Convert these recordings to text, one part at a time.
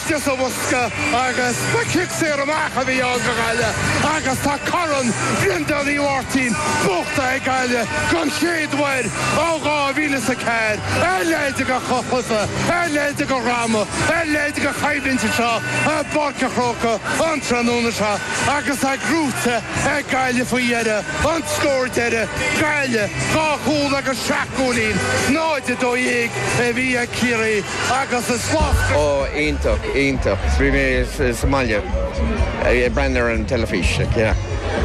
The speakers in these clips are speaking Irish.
Deas a bhosca agus ba cic saor amach a bhí ann do Ghaillimh agus tá corn Bhreandáin Uí Mháirtín buachtaithe ag Gaillimh don chéad uair ó 2000 is a ceathair. A leithéid de shlua, a leithéid de dhráma, a leithéid de choimhlint anseo i bPáirc an Chrócaigh an tráthnóna seo agus tá gnóite ag Gaillimh faoi dheireadh. An scór deireadh, Gaillimh dhá chúl agus seacht gcúilín, 0-12 a bhí ag Ciarraí. agus is maith. Ó, iontach, iontach. Bhí mé sa mbaile ag breathnú ar an teilifís.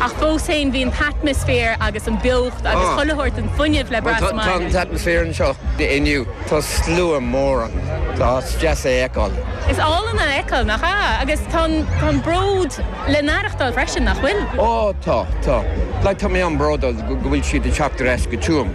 Ach fós féin, bhí an t-atmaisféar agus an beocht agus chuile shórt den fuinneamh le brath sa mbaile. Tá an t-atmaisféar anseo inniu, tá slua mór ann, tá is deas é a fheiceáil. Is álainn a fheiceáil, nach ea? Agus tá an bród le n-aireachtáil freisin, nach bhfuil? Ó, tá, tá. Tá mé an-bhródúil go bhfuil siad ag teacht ar ais go Tuaim.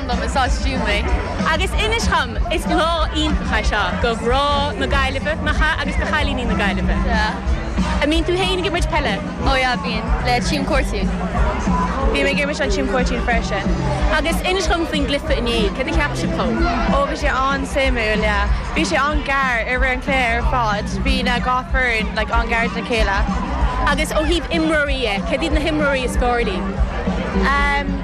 Slán liom, is as Tuaim mé. Agus inis dhom, is lá iontach é seo do mhná na Gaillimhe, nach ea, agus do chailíní na Gaillimhe? Yeah. An mbíonn tú féin ag imirt peile? Ó yeah, bíonn, le Tuam Cortoon. Bhí mé ag imirt le Tuam Cortoon freisin. Agus inis dhom faoin gcluiche inné, cad a cheap sibh dhó? Ó bhí sé an-suimiúil, yeah. Bhí sé an-ghar i rith an chluiche ar fad, bhí na dhá foireann like an-ghar do na chéile. Agus ó thaobh imreoirí dhe, cad iad na himreoirí is fearr libh?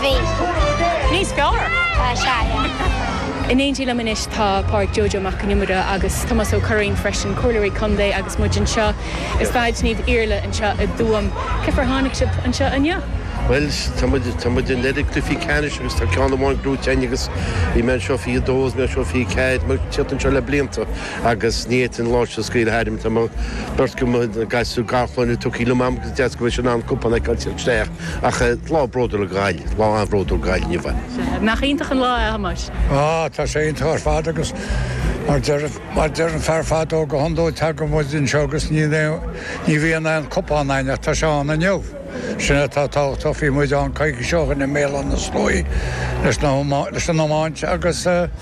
Bhí. Níos fearr? Tá, sea, yeah. In éindí liom anois tá Pádraig Joe Joe Mac an Iomaire agus Tomás Ó Curraoin freisin, Comhairleoirí Contae agus muid anseo i Staid Naomh Iarlaith anseo i dTuaim. Cén fáth ar tháinig sibh anseo inniu? Bhuel, tá muid, tá muid in ar an gcluichí ceannais agus tá ceann amháin gnóite againn agus bhí mé anseo 22 agus mé anseo 24, muid ag teacht anseo le blianta agus ní fhéadfainn an lá seo a scaoileadh tharam, tá mo, beirt de mo gasúir garchlann tugthaí liom a'm agus is deas go bhfuil sé in ann cupán a fheiceáil isteach. Ach lá bródúil do Ghaillimh, lá an-bhródúil do Ghaillimh inniu. Nach iontach an lá é a Thomáis? Á, tá sé iontach ar fad agus mar a deir an fear fadó go hiondúil tagann muid anseo agus ní bhíonn aon cupán ann ach tá sé ann inniu. Sin atá tábhachtach, bhí muid ann coicís ó shin i mBéal Átha na Sluaighe leis an iomáint agus.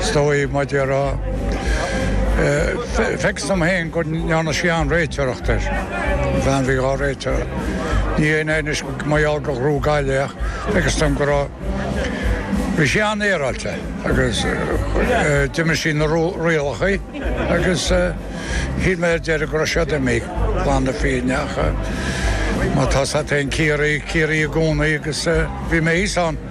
Is dóigh maidir le, facthas dom féin go ndearna sí an-réiteoireacht air, an bhean a bhí ina réiteoir. Ní hé anois mar gheall gur ghnóthaigh Gaillimh é ach facthas dom go raibh bhí sí an-fhéaráilte agus d'imir sí na rialacha agus shíl mé ar deireadh go raibh siad ag imeacht glan na fírinne ach mar atá a fhios a'd féin Ciarraí Ciarraí i gcónaí agus bhí mé thuas ann.